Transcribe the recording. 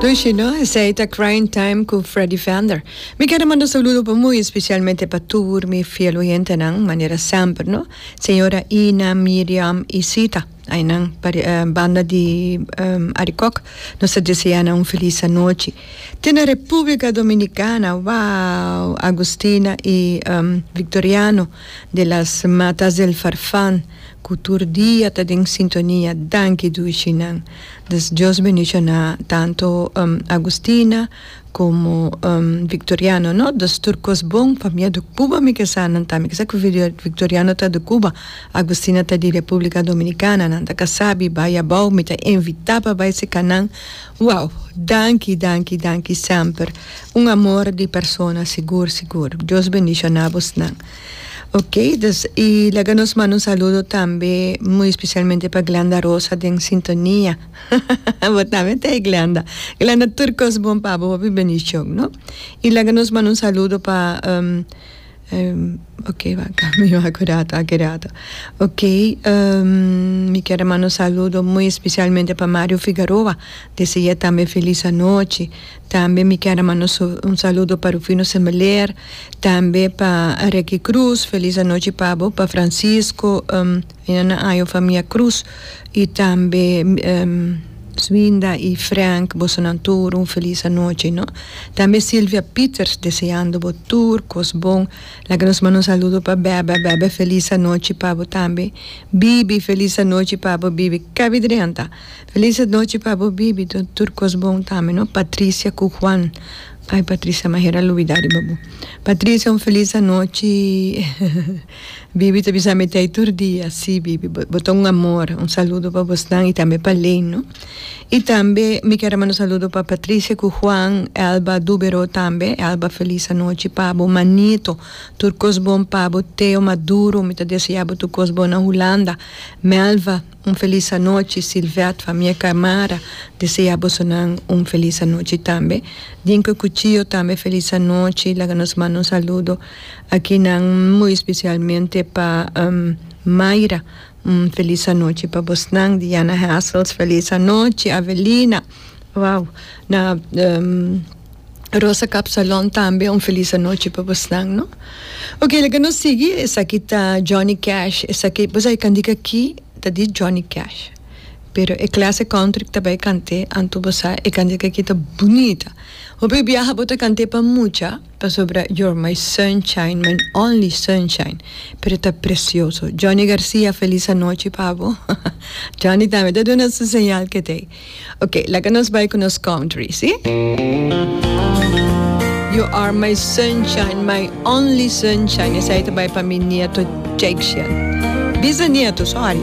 Tushi no, esei ta Crying Time cu Freddy Vander. Mi kere manda saludo pa muy especialmente pa tur mi fiel oyentenan, manera semper no, Señora Ina, Miriam y Sita, aynan pa banda di Arikok, nos ta desea nan un feliz anochi. Te na Republica Dominicana, wow! Agustina y Victoriano de las Matas del Farfan. Ku tur dia ta den sintonia danki dushi nan dus Dios bendiciona tanto Agustina como Victoriano no dos tur cos bon pa mia di Cuba mi ke sa nan ta mi ke sa ku Victoriano ta di Cuba Agustina ta di Republica Dominicana nan ta casa bi bai abao mi ta invita pa bai seka nan wow danki danki danki semper un amor di persona sigur sigur Dios bendiciona bos nan. Ok dus y laga nos manda un saludo tambe muy especialmente pa Glanda Rosa den sintonia bo tambe ta e Glanda Glanda tur cos bon pa bo papi bendición no y laga nos manda un saludo pa um ok wak mi wak cu rato aki rato ok um mi kier a manda un saludo muy especialmente pa Mario Figaroa deseae tambe feliz anochi. Tambe mi kier a manda un saludo pa Rufino Sembelier, tambe pa Reky Cruz, felis anochi pa bo, pa Francisco, ina nan año famia Cruz, y tambe Swinda y Frank, boso nan tur un felis anochi no. Tambe Silvia Pieters deseando bo tur cos bon, laga nos manda un saludo pa Bebe, Bebe felis anochi pa bo tambe, Bibi felis anochi pa bo Bibi, cabi drenta. Feliz anochi pa bo bibi do tur kos bon tambe no Patricia cu Juan ay Patricia ma hera lubida riba bo Patricia un feliz anochi bibi ta bisa mete ay tur dia si bibi bo ta un amor un saludo pa bos nan y tambe pa Lane no y tambe mi ker a manda un saludo pa Patricia cu Juan Elba Dubero tambe Elba feliz anochi pa bo Manito tur kos bon pa bo Teo Maduro mi ta desea bo tur kos bon na Hulanda Melva. Un felis anochi Silvette famia Camara desea boso nan un felis anochi tambe Dinko Cuchillo tambe felis anochi laga nos manda un saludo aki nan muy especialmente pa Mayra un felis anochi pa bosnan Diana Hassels felis anochi Avelina wao na. Rosa Capsalon tambe un felis anochi pa bosnan no. Ok laga nos sigui esaki ta Johnny Cash esaki bo sai candi aki ta di Johnny Cash pero e clase country cu ta bay cante anto bo sa e candi aki ta bunita hopi biaha bo ta cante pa mucha pasobra you're my sunshine my only sunshine pero ta precioso Johnny Garcia felis anochi pa bo Johnny tambe ta duna su señal ketey. Ok, laga nos bai ku nos country, si? You are my sunshine, my only sunshine. Esei ta bai pa mi nieto Jakecia. Bisanieto, sorry.